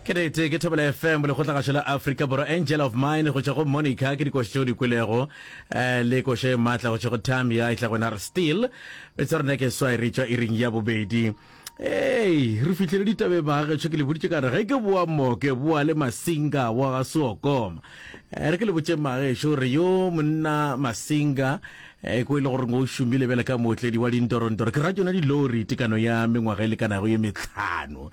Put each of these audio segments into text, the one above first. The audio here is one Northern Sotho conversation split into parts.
Ke nete, ke Thobela FM, Lekgotlagašo la Afrika Borwa, Angel of Mine go tšwa go Monica, ke dikoši tšeo di kwelego, eh, le koše e matla go tšwa go Tamia, e tla go Nar Steel. Metse ya rona ke swai re tšwa iring ya bobedi. Ei, re fihlele ditabe baagešo, ke le boditše ka re ge ke boa moke, boa le Masinga wa ga Seokoma. Eh, re ke le botše maagešo re yo monna Masinga, eh, ko e le gore o šomile bjale ka mootledi wa dintorondoro, ke ra tšona dilori, tekano ya mengwaga e lekanago ye metlhano.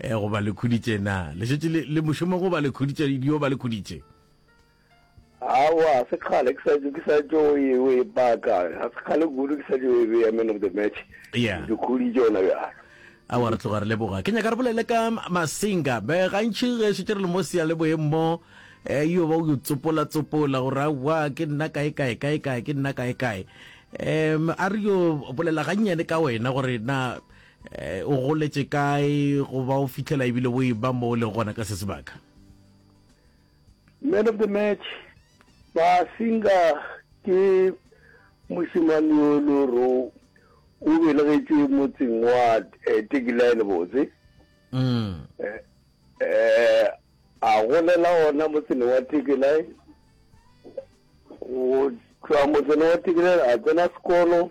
Eh, goba le khuditše na le šetše le le mošomo goba le khuditše yo ba le khuditše awa se kgale ke sa ke sa tšo e- o e paka ga se kgale kudu ke sa tšo e beya man of the match Yeah. ke khuditše ona bjalo a wa re tloga re leboga ke nyaka re bolele ka masinga be gantšhi ge šetse re le mo sia le boeng mo um yo ba o yo tsopola tsopola gore aowa ke nna kae kae kae kae ke nna kae kae um a re yo bolela gannyane ka wena gore na Eh, o goletše kae goba o fitlhela ebile o e ba mo o leng gona ka se sebaka man of the match basinga ke mosimane yo e le gore o belegetšwe motseng wa eh, tekilaene botse mm. eh, eh, a golela ona motsene wa tekilaene go tšwa motsene wa tekilaene a tsena sekolo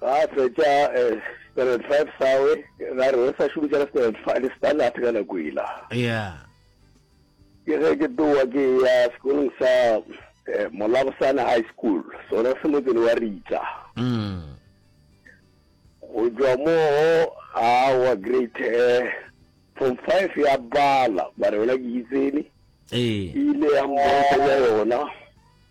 Ga a fetša Standard Five sawe, ra re o sa šomiša le Standard Five, le Standard ka nako ela. Yeah. Ke ge ke tlowa ke ya sekolong sa Molabosana High School, sona se motseng wa Ritsa. Mm. Go tšwa moo a wa grade form five ya bala, ba re yona ke itsene. Ee. Ile ya mmontsha yona.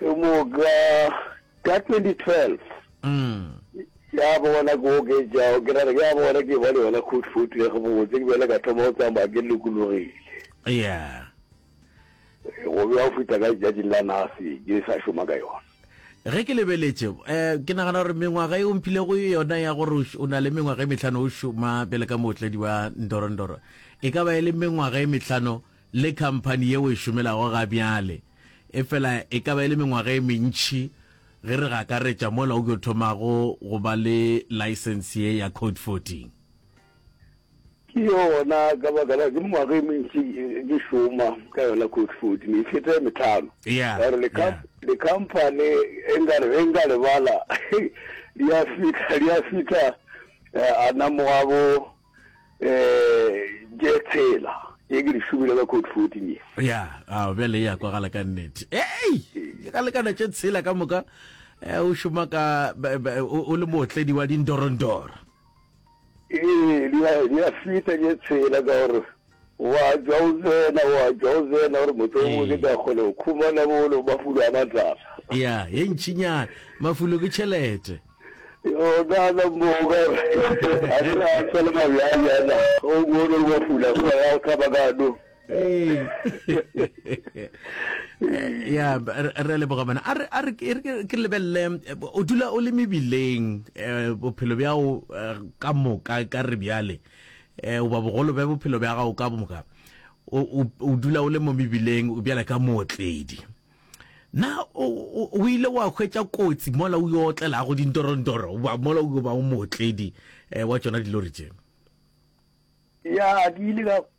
ke moka ka 2012 ya bona ke oketšao ke rare ya bona ke ba le yona khutfutu ya gabotse ke bjale ka thoma go tsamaya ke lokologile ya go bja go fita ka letšatšing la nase ke sa šoma ka yona ge ke lebeletše um ke nagana gore mengwaga e omphilego yona ya gore o na le mengwaga e metlhano o šoma pele ka mootledi wa ndorondoro e ka ba e le mengwaga e metlhano le khamphani ye o e šomelago ga bjale, efela e ka ba e le mengwaga e mentši ge re go akaretša mola o yo thomago go ba le laesense ye ya Code Fourteen. Ke yona, ka baka la ke mengwaga e mentši ke šoma ka yona Code Fourteen, e feta e metlhano. Ya, Ka gore le ya. kha- le khamphani e nka re ge nka lebala, di a fihla, di a fihla eh, a namoga bo um je tshela ye ke di šomile ka code fourteen ye ya a bjale ya kwagala ka nnete ei ke ka lekana tše tshela ka moka eh, o šoma ka ba- ba- o o le mootledi wa dindorondoro ee di a- di a fita je tshela ka gore O a tšwa o tsena, o a tšwa o tsena, gore motho o mongwe ke tla kgona go khumana bolo mafulo a matlala. Ya, ye ntšinyana. Mafulo ke tšhelete. Yona na moka, a ke re a tshwale mabjang yana, o bone gore mafulo a sona ya go thaba ka no. Ya, re a leboga bana. A re, a re, e re ke lebelele, o dula o le mebileng, bophelo bjao ka moka, ka re bjale. eh, goba bogolo bja bophelo bja gago ka moka o, o, o dula o le mo mebileng o bjale ka mootledi na o ile wa hwetša kotsi mola o yo otlelago dintorontoro ba mola o yo ba o mootledi um wa tšona dilori tše ya ke ile ka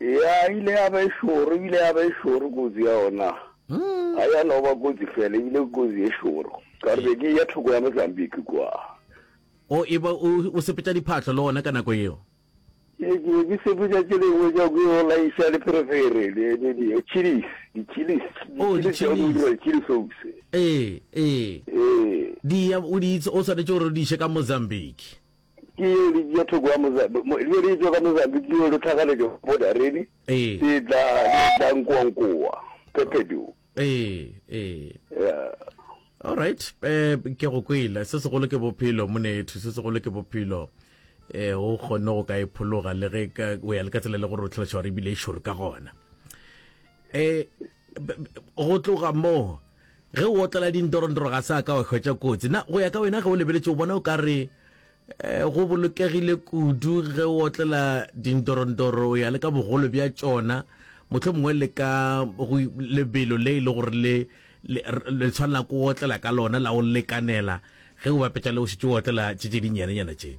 Ya, ile ya ba e šoro, ile ya ba e šoro kotsi ya ona. Hmm. Ga ya no ba kotsi fela, ebile kotsi e šoro. Ka re be ke ya thoko ya Mozambique kwa. O e ba o sepetša diphatlo le ona ka nako eo? ke be ke sepetša tše dingwe tša ko yo laiša leferefere chilis di-chilis chilis oaks ee ee ee di o swanetše gore o di iše ka mozambique Ke yeo di tšea thoko ya mozabi, mo, leo di etšwa ka mozabi, ke yeo di tlhagaletšwa go bodaredi, Ee. di tla, di tla nkoankoa, phephedu. Ee, ee. Yeah. All right, um ke go kwele. Se segolo ke bophelo, monetho, se segolo ke bophelo. Eh, o kgonne go ka e phologa le ge ka o ya le ka tsela le gore o tlhaloša gore ebile e šoro ka gona. Eh, b- b- go tloga moo Ge o otlela dintorontoro ga se a ka wa hwetša kotsi. Na go ya ka wena ge o lebeletše o bona o ka re eh, go bolokegile kudu ge o otlela dintorontoro o ya le ka bogolo bja tšona motlho mongwe le ka lebelo le e le gore le le tshwanela go otlela ka lona la o lekanela ge o bapetša le o šitše o otlela tše tše dinyanenyana tše?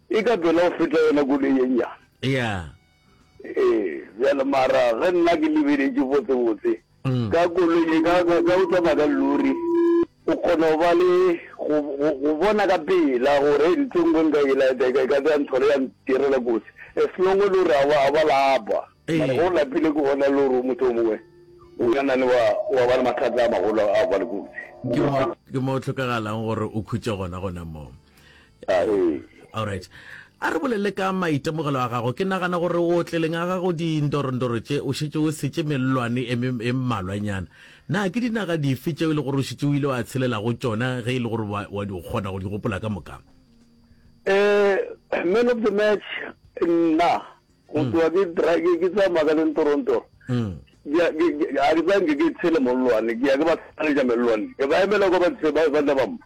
E ka tšwela go feta yona koloi ye nnyane. Yeah. Ee, bjale mara ge nna ke lebeletše botsebotse, ka koloi ye, ka, ka, ka o tsamaya ka lori, o kgona go ba le, go, go, go bona ka pela gore hei ntho e nngwe nka e laetša, e ka, e ka tla ya ntshwara ya ntirela kotsi. As long e le gore ga ba, ga ba lapa. Mara ge o lapile ke gona e le gore motho yo mongwe o ka na le wa, wa ba le mathata a magolo a go ba le kotsi. Ke mo, ke mo go hlokagalang gore o khutše gona, gona moo. A re. Alright. A re bolele ka maitemogelo a gago. Ke nagana gore o tleleng a gago dindorondoro tše, o šetše o setše mellwane e me, e mmalwanyana. Na ke dinaga dife tšeo e le gore o šetše o ile wa tshelela go tšona ge e le gore wa, wa di, o kgona go di gopola ka moka? Um, man of the match, nna, go tloga ke dra-, ke, ke tsamaya ka dintorontoro, ke ya, ke, ke, ga ke tsanke ke tshele mollwane, ke ya ke ba tshwaletša mellwane, ke ba emela kwa ba, ba, ba tla ba mpha.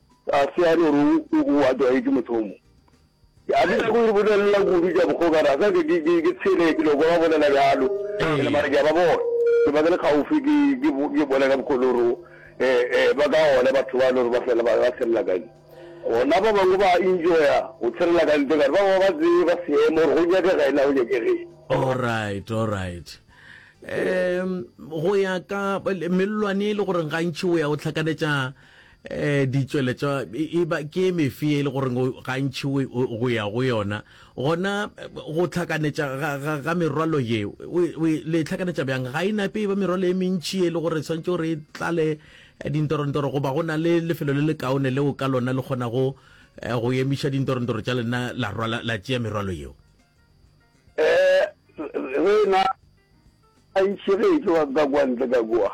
A se a no re o o a tlwaetše motho o mo. A ke nyake go le bolelela kudu tša bokgokana, a sa ke ke ke ke tshele ke no kwa ba bolela bjalo. Ke le mara ke a ba bona. Ke ba ke le kgaufsi ke ke ke bona ka mokgwa o lo re eh eh ba ka ona batho ba lo re ba fela ba ba tshella ka ntle. Gona ba bangwe ba enjoya go tshella ka ntle gare ba bangwe ba tseba seemo gore go nyakega ena go nyakegeng. Alright, alright. Um go ya ka mellwane e le goreng gantši o ya o tlhakanetša um ditšweletšwa e ba ke mefe e le gore gantši go ya go yona gona go tlhakanetša ga merwalo ye le tlhakanetša bjang ga e nape e ba merwalo e mentši e le gore tshwanetse gore e tlale dintorontoro goba go na le lefelo le le kaone leo ka lona le kgonago eh, go emiša dintorontoro tša lena la rwala la tšea merwalo yeo um rena gantši ge e tlo ka kwantle ka kua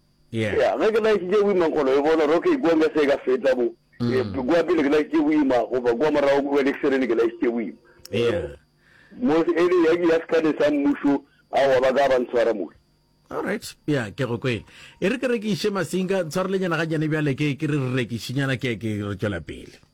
Yeah. Yeah, ge ke laetšitše boima nkgolo e bona, roke ikwa nka se ka feta mo. Yeah, ke kwa pele ke laetšitše boima, goba kwa morago kwa lekserene ke laetšitše boima. Yeah. Mo e le ya ke ya sekane sa mmušo, aowa ba ka ba ntshwara mo. Alright, yeah, ke go kwele. E re ke rekiše masinka, ntshwarelenyana ga nyane bjale ke ke re re rekišinyana ke ke re tšwela pele.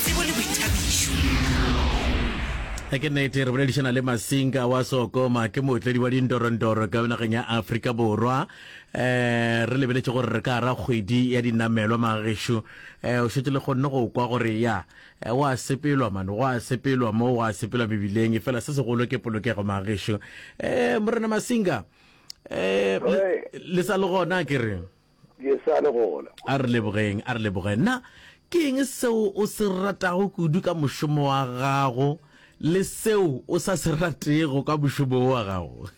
tsebo le boithabišo. Ke nnete re boledišana le Masinga wa Sokoma ke mootledi wa dindorondoro ka nageng ya Afrika Borwa eh re lebeletše gore re ka ara kgwedi ya dinamelwa magešu eh o šetse le kgonne go kwa gore ya eh, wa sepelwa mane wa sepelwa mo wa sepelwa mebileng e fela se segolo ke polokego magešu eh morena Masinga eh le sa le gona ke re Ke sa le gona. A re lebogeng, a re lebogeng. Na ke eng seo o se ratago kudu ka mošomo wa gago le seo o sa se ratego ka mošomo wo wa gago?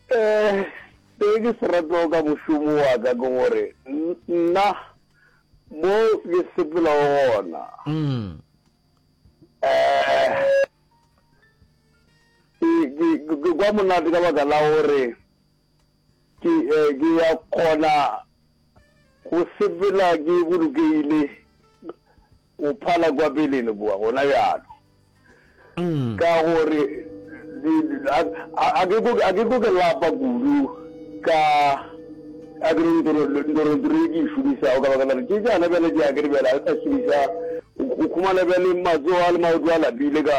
Eh, se ke se ratago ka mošomo wa ka ke gore nna mo ke sepelago gona. Mm. Eh, ke kwa monate ka baka la gore Ke, ke ya kgona go sepela ke bolokegile, go phala kwa peleng kua, gona bjalo. Ka gore, di, a, a, a ke ko, a ke ko ke lapa kudu ka, a ke re ntoro, ntoro, ntoro e ke e šomišago ka baka la gore ke tšana bjale tše a ke re bjale a ke sa šomiša, go khumana bjale matsogo a le maoto a lapile ka.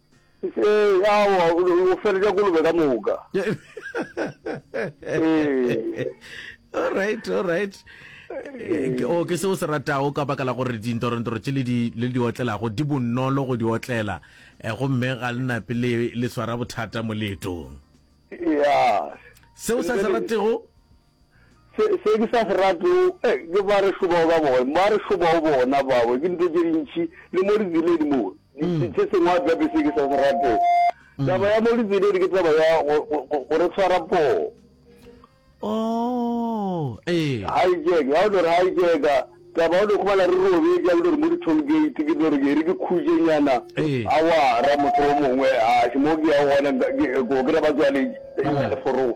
Ee, aowa, o feletša kolobe ka moka. All right, all right. Eh, ke o ke se o se ratago ka baka la gore dintorentoro tše le di le di otlelago di bonolo go di otlela eh, gomme ga le nape le le swara bothata moletong ya seo sa se ratego Se, se ke sa se ratego, eh, ke ba re šobago ka bona, ba re šobago bona babo, ke dintho tše dintši, le mo ditseledi mo, di, di, se sengwe a gape se ke sa se ratego. Taba ya mo ditseledi ke taba ya go, go, go, go re tshwara poo. Oh, ee. Hijack, ga o no re hijacka, taba ya go no khumana re robetše, ya go no re mo di-toll gate, ke no re ke re ke khutšenyana, Ee. awara, motho o mongwe, a se mo ke ya gona, nka- ke- ko kry-a ba tswaletše, Ee. leforong.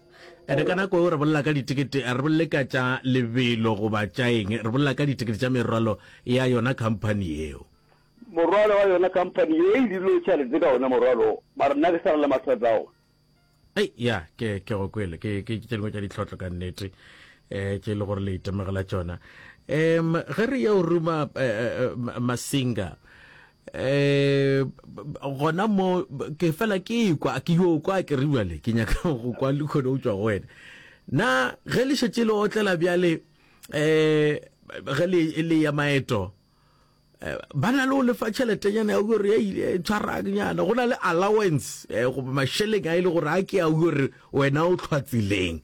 Ene ka nako re bolela ka ditikete a re bolele ka tša lebelo goba tša eng re bolela ka ditikete tša merwalo ya yona company yeo morwalo wa yona company ye e dilo tša letse ka ona morwalo ba re nna ke sa re le mathata ona ei ya ke ke go kwele ke ke tše dingwe tša ditlhotlho ka nnete eh tše e le gore le itemogela tšona um ge re yeo ruma eh, eh, eh, masinga eh gona mo ke fela ke kwa ke yo kwa ke re bjale ke nyaka go kwa le khone o tswa go wena na ge le šetse le otlela bjale eh ge le e le ya maeto eh, ba na le o lefa tšheletenyana ya gore ya ile eh, tshwaragnyana go na le allowance eh, goba mašeleng a e le gore a ke a gore wena o tlhwatsileng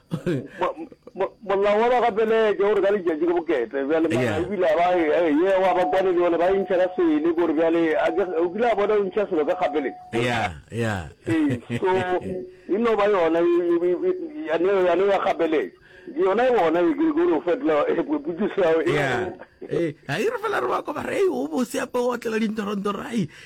molao wa bagapeleke gore ka letšatši ke boketle bjale mana o kile ba ye wa ba kwane le yone ba intšha ka sele gore bjale o kile a bona o ntšha selo ka gapeleng so e no ba yona yane ya gapeleke yona e gona e kere gore o fetola potsiso ya ga e re fela re ba koba re o bose ape o otlela dintorontoro ai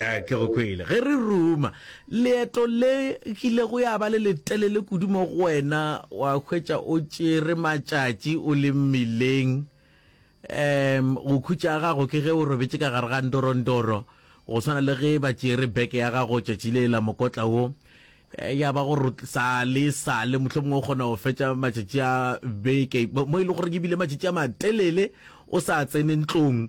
Ee, ke go kwele. Ge re ruma, leeto le kilego ya ba le letelele kudu mo go wena, wa hwetša o tšere matšatši o le mmileng. Um, go khutša ga gago ke ge o robetše ka gare ga ndorondoro, go swana le ge ba tšere beke ya gago tšatši le la mokotla wo. Eh, ya ba gore sa le sa le mohlomongwe o kgona go fetša matšatši a beke mo e le gore ebile matšatši a matelele o sa tsene ntlong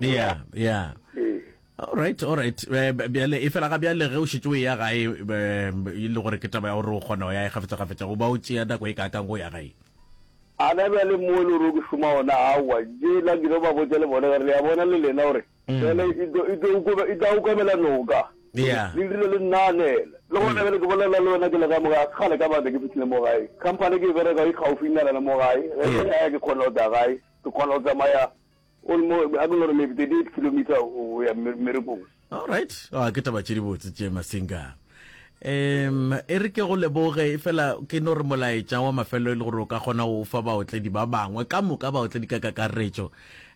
ya ya right alright eh, bjale e fela ga bjale ge o šetse o ya gae eh, e le gore ke taba ya gore o kgona go ya e gafetsa-gafetsa go ba o tšea nako e kaakang go ya gae ana bjale mo e le gore o ke šoma ona aowa je la kile ba botsa le bone gare le ya bona le lena gore mm. fele e tla okamela noka le dirile le nnanela le gona bjale ke bolelela le wena ke le ka mogae kgale ka bata ke fitlhile mo gae company ke e bereka e kgaufinyana le mo gae ge ke kgona go tsa gae ke kgona go tsamaya O re mo, a ke no re maybe 38 kilometer o ya mmerekong. All right. Oh, ke taba tše dibotse tše Masinga. Um, e re ke go leboge e fela ke no re molaetša wa mafelo e le gore o ka kgona go fa baotledi ba bangwe ka moka baotledi ka kakaretšo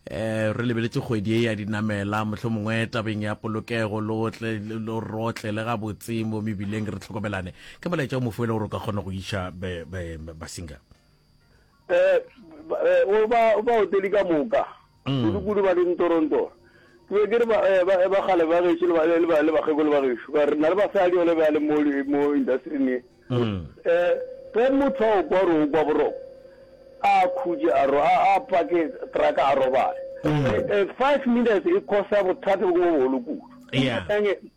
eh re lebeletše kgwedi e ya dinamela motlho mongwe tabeng ya polokego lotle lo rotle le ga botsimo mebileng re tlhokomelane ke molaetša o mofuele gore o ka kgona go iša basinga um o ba ba oteli ka moka mm. kudu-kudu ba leng torontor ke be ke re eh, ba ba gale ba gešo le bakgekolo ba gešo ka re na le basadi ole ba le mo industrin e um ge motho a o kwa ro o kwa boroko a khutše a ro a pake traka a robale mm. eh, five minutes e khosa bothata bo ke bo bogolo kudu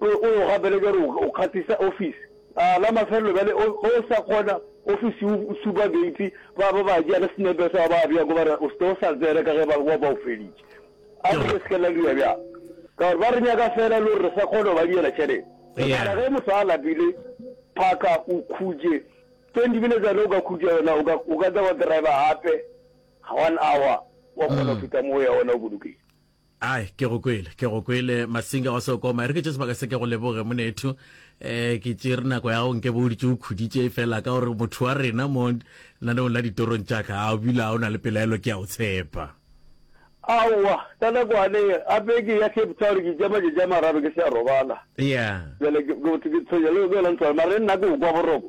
O yo gapeletša gore o kgatisa ofisi. A la mafelelo bjale o o sa kgona ofisi o supa geiti, ba ba ba tšea le senepe sa ba bjako ba re o se ke o sa tsena ka ge ba ba ba o feditše. A re le se ke la dira bjang ka gore ba re nyaka fela le gore re sa kgona go ba diela tšhelete. Mara ge motho a lapile, phaka o khutše twenty minutes yona o ka khutša yona, o ka o ka tla wa driver gape one hour wa kgona go feta moo ya ona o bolokile. Ai, ke go kwele, ke go kwele, Masinga wa Seokoma. E re ke tše sebaka se ke go leboge, monethu. Eh, ke tšere nako ya gago nke bo o ditše o khuditše e fela ka gore motho wa rena mo naneong la ditorong tša ka, a o bile a o na le pelaelo ke a o tshepa. Aowa, ka nako a ne a be ke ya Cape Town, ke tša matšatši a mararo ke se a robala. Yeah. Bjale ke, ke, ke tshwenya le, le yona ntlwana, mare nna ke o kwa boroko.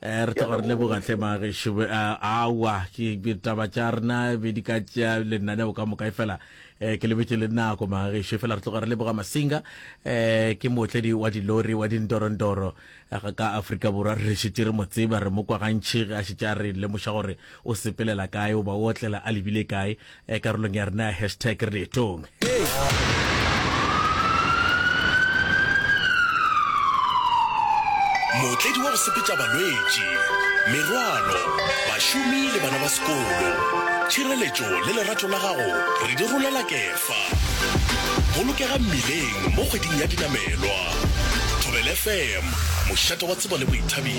Eh, re tloga re leboga tle magešu awa ditaba tša rena be di ka tšea lenaneo ka moka e fela um ke lebetse le nako magešu e fela re tloga re leboga masinga um ke mootledi wa dilori wa dindorondoro ka aforika borwa re šetse re mo tseba re mo kwa gantšhi ge a šetse a re lemoša gore o sepelela kae o ba o otlela a lebile kae eh, karolong ya rena ya hashtag re leetong mootledi wa go sepetša balwetši merwalo bašomi le bana ba sekolo tšhireletšo le lerato la gago re di rolela kefa bolokega mmileng mo kgweding ya dinamelwa thobel fm mošate wa tsebo le boithabišo